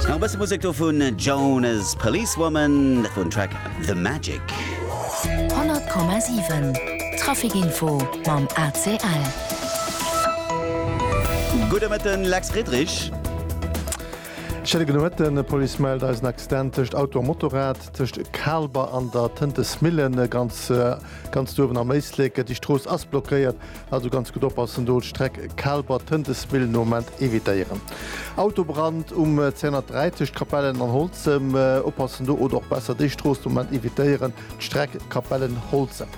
Nach e bësse Musek do vun Jones, Policewoman, dat wor den Track The Magic. 100,7 Traficinfo mam ACL. Gudde Mëtten, Lex Friedrich. Schéine gudde Mëtten. E Police mellt eis en Accident tëscht Auto a Motorrad tëscht Kaalber an der Tëntesmillen. Ganz uewen am Éislek. Déi Strooss ass blockéiert. Also ganz gutt oppassen do, Streck Kaalber, Tëntesmill no Ament evitéieren. Autobrand um 203 tëscht Capellen an Holzem, oppassen do oder och besser déi Strooss no Ament evitéieren, d'Streck Capellen, Holzem.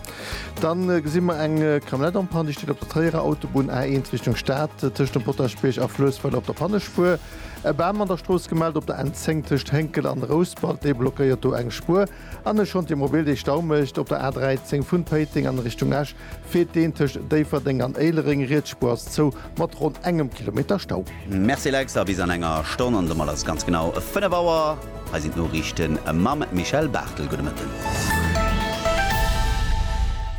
Dann gesi mer eng Camionnette am Panne, déi steet op der Tréierer Autobunn A1 Richtung Stad tëscht dem Potaschbierg a Fluessweiler op der Pannespuer. E Bam an der Strooss gemellt op der N10 tëscht Hénkel an Rouspert, dee blockéiert do eng Spuer. An ech schonn d'Immobil déi Stau mécht. Op der A 13 vun Péiteng an Richtung Esch feelt deen tëscht Déifferdeng an Éilereng. Riets Spuer ass zou mat ronn engem Kilometer Stau. Merci Lex, a bis an enger Stonn an domat ass et ganz genau 5 Auer. Hei sinn d'Noriichte mam Michèle Barthel. Gudde Mëtten.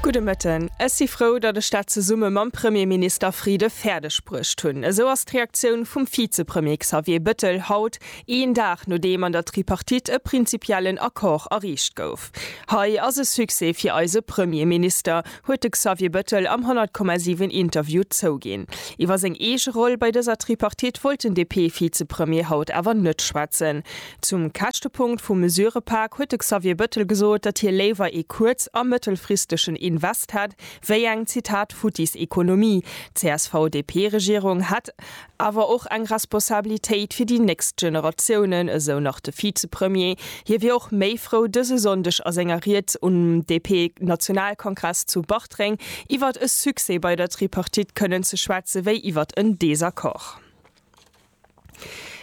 Gudde Mëtten. Ech si frou, datt ech dat zesumme mam Premierminister Friede fäerdeg bruecht hunn. Esou ass d'Reaktioun vum Vizepremier Xavier Bettel haut. Een Dag nodeem an der Tripartite e prinzipiellen Accord erreecht gouf. Hei ass e Succès fir eise Premierminister, huet de Xavier Bëttel am 100,7 Interview zouginn. Iwwer seng eege Roll bei dëser Tripartite wollt den DP-Vizepremier haut awer net schwätzen. Zum Käschtepunkt vum Mesurëpak huet de Xavier Bëttel gesot, datt hie léiwer ee kuerz a mëttelfristegen Invest hätt wéi eng, Zitat, futtis Economie. D'CSV-DP-Regierung hätt awer och eng Responsabilitéit fir déi nächst Generatiounen, esou nach de Vizepremier. Hie wier och méi frou, dëse Sonndeg a senger Ried um DP-Nationalkongress zu Bartreng iwwert e Succès bei der Tripartite kënnen ze schwätze wéi iwwert en Desaccord.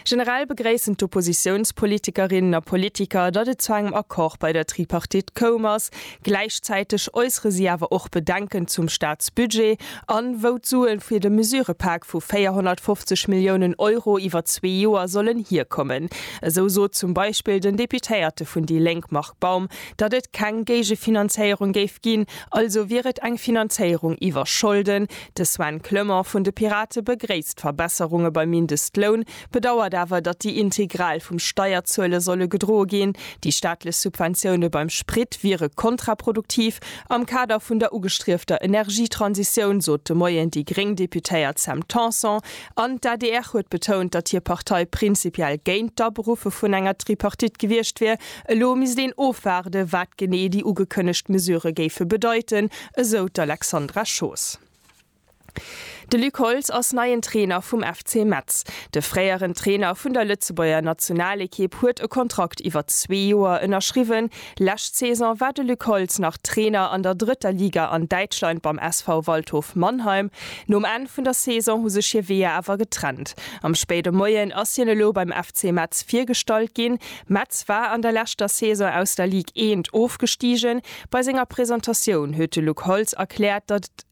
Generell begréissen d'Oppositiounspolitikerinnen a politiker, datt et zu engem Accord bei der Tripartite koum ass. Gläichzäiteg äussere si awer och Bedenken zum Staatsbudget an wou d'Suen fir de Mesurepak vu 450 Milliounen Euro iwwer zwee Joer sollen hierkommen. Esou sot zum Beispill den Deputéierte vun déi Lénk Marc Baum, datt et keng Géigefinanzéierung géif ginn, also wier et eng Finanzéierung iwwer Scholden. De Sven Clement vun de Pirate begréisst d'Verbesserunge beim Mindestloun, bedauert awer, datt déi integral vum Steierzuele solle gedroe ginn. Déi staatlech Subventioune beim Sprit wiere kontraproduktiv am Kader vun der ugestriefter Energietransitioun, sot de Moien déi gréng Deputéiert Sam Tanson. An d'ADR huet betount, datt hir Partei prinzipiell géint d'Aberuffe vun enger Tripartite gewiescht wier. Elo misst een ofwaarden, wat genee déi ugekënnegt Mesurë géife bedeiten, esou d'Alexandra Schoos. De Luc Holtz ass neien Trainer vum FC Metz. De fréieren Trainer vun der Lëtzebuerger Nationalekipp huet e Kontrakt iwwer zwee Joer ënnerschriwwen. Lescht Saison war de Luc Holtz nach Trainer an der drëtter Liga an Däitschland beim SV Waldhof Mannheim. Nom Enn vun der Saison hu sech hir Weeër awer getrennt. Am spéide Moien ass hien elo beim FC Metz virgestallt ginn. Metz war an der leschter Saison aus der Ligue 1 ofgestigen. Bei senger Presentatioun huet de Luc Holtz erkläert, datt et.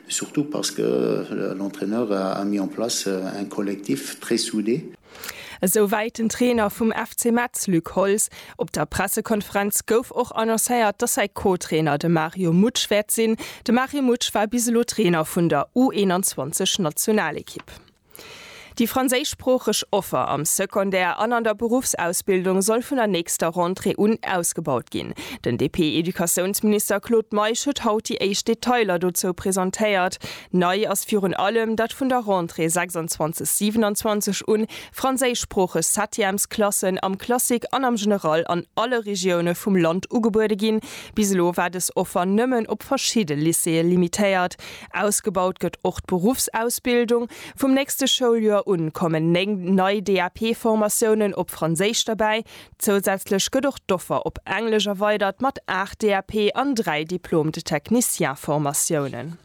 Surtout parce que l'entraineur a mis en place un collectif très soudé. Esou wäit den Trainer vum FC Metz Luc Holtz. Op der Pressekonferenz gouf och annoncéiert, datt säi Co-Trainer de Mario Mutsch wäert sinn. De Mario Mutsch war bis elo Trainer vun der U21-Nationalequipe. Déi franséischsproocheg Offer am Secondaire an an der Beruffsausbildung soll vun der nächster Rentrée un ausgebaut ginn. Den DP-Educatiounsminister Claude Meisch huet haut déi éischt Detailer dozou presentéiert. Nei ass virun allem, datt vun der Rentrée 26, 27 un franséischsproocheg Septièmesklassen am Classique an am General an alle Regioune vum Land ugebuede ginn. Bis elo war dës Offer nëmmen op verschidde Lycéeë limitéiert. Ausgebaut gëtt och d'Beruffsausbildung. Vum nächste Schouljoer un kommen 9 nei DAP-Formatiounen op Franséisch derbäi. Zousätzlech gëtt och d'Offer op Englesch erweidert mat 8 DAP an 3 Diplôme de technicien-Formatiounen.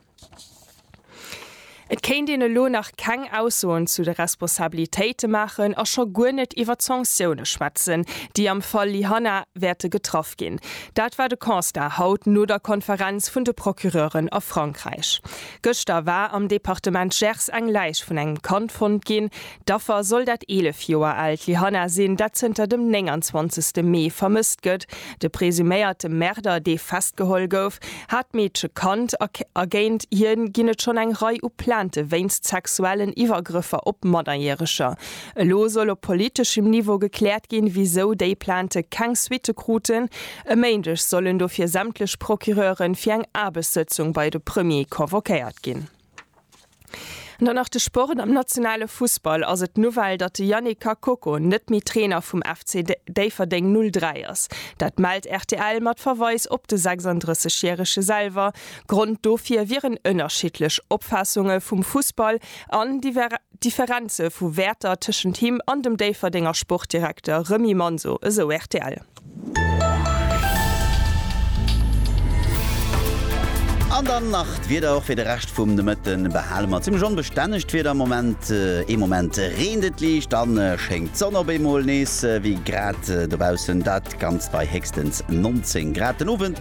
Et kéint een elo nach keng Aussoen zu de Responsabilitéite maachen a scho guer net iwwer d'Sanktioune schwätzen, déi am Fall Lyhanna wäerte getraff ginn. Dat war de Constat haut no der Konferenz vun de Procureuren a Frankräich. Gëschter war am Departement Gers eng Läich vun engem Kand fonnt ginn. D'Affer soll dat 11 Joer aalt Lyhanna sinn, dat zënter dem 29 Mee vermësst gëtt. De presuméierte Märder, dee festgeholl gouf, hat d'Meedche kannt a géint hie ginn et schonn eng Rei u Plainte wéinst sexuellen Iwwergrëffer op Mannerjäreger. Elo soll op politeschem Niveau gekläert ginn, wisou déi Plainte keng Suitte kruten. E Méindeg sollen dofir sämtlech Procureure fir eng Aarbechtssëtzung bei de Premier convoquéiert ginn. An dann nach de Sport, Am nationale Fussball ass et d'Nouvelle, datt de Yannick Kakoko net méi Trainer vum FC Déifferdeng 03 ass. Dat mellt rtl mat Verweis op de 36 järege selwer. Grond dofir wieren ënnerschiddlech Opfaassunge vum Fussball an Differenze vu Wäerter tëschent him an dem Déifferdenger Sportdirekter Remy Manso, esou rtl. An dann nach d'Wieder och fir de Rescht vum Nomëtte behale mer zimmlech onbestänneg d'Wieder am Moment. Ee Moment reent et liicht, dann schéngt d'Sonn op eemol nees. Wéi grad dobaussen, dat Ganzt bei héchstens 19 Grad. Den Owend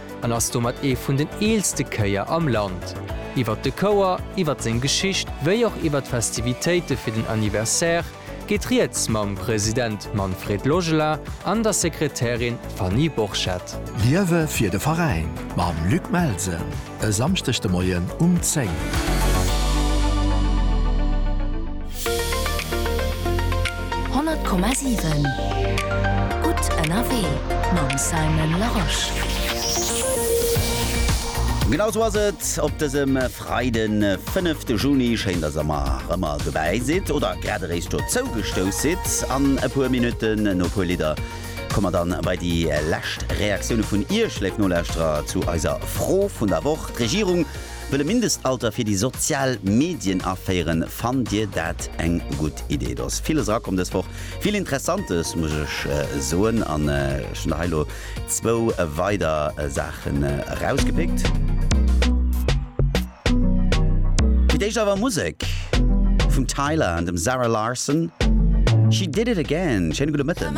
an ass domat ee vun den eelste Kéier am Land. Iwwert de Chouer, iwwert seng Geschicht wéi och iwwert d'Festivitéite fir den Anniversaire geet Rieds mam President Manfred Logela an der Sekretärin Fanny Borchert. Liewe fir de Veräin mam Luc Melsen e Samschdeg de Moien um 10. 100,7 Gutt ënnerwee mam Simon Larosche. Genau sou ass et op dësem Freiden, 5 de Juni. Schéin, dass der mer rëmmer dobäi sidd oder grad eréischt dozou gestouss sidd. An e puer Minutten, no e puer Lidder, komme mer dann bei déi lescht Reaktioune vun Iech, léif Nolauschterer, zu eiser Fro vun der Woch. D'Regierung Wëll e Mindestalter fir déi sozial Medien aféieren, fannt Dir dat eng gutt Idee? Do ass villes erakomm dës Woch, vill Interessantes muss ech soen an ech hunn der hei elo zwou weider Saachen erausgepickt. Fir d'éischt awer Musek vum Tyla an dem Zara Larsson, She Did It Again. Schéine gudde Mëtten.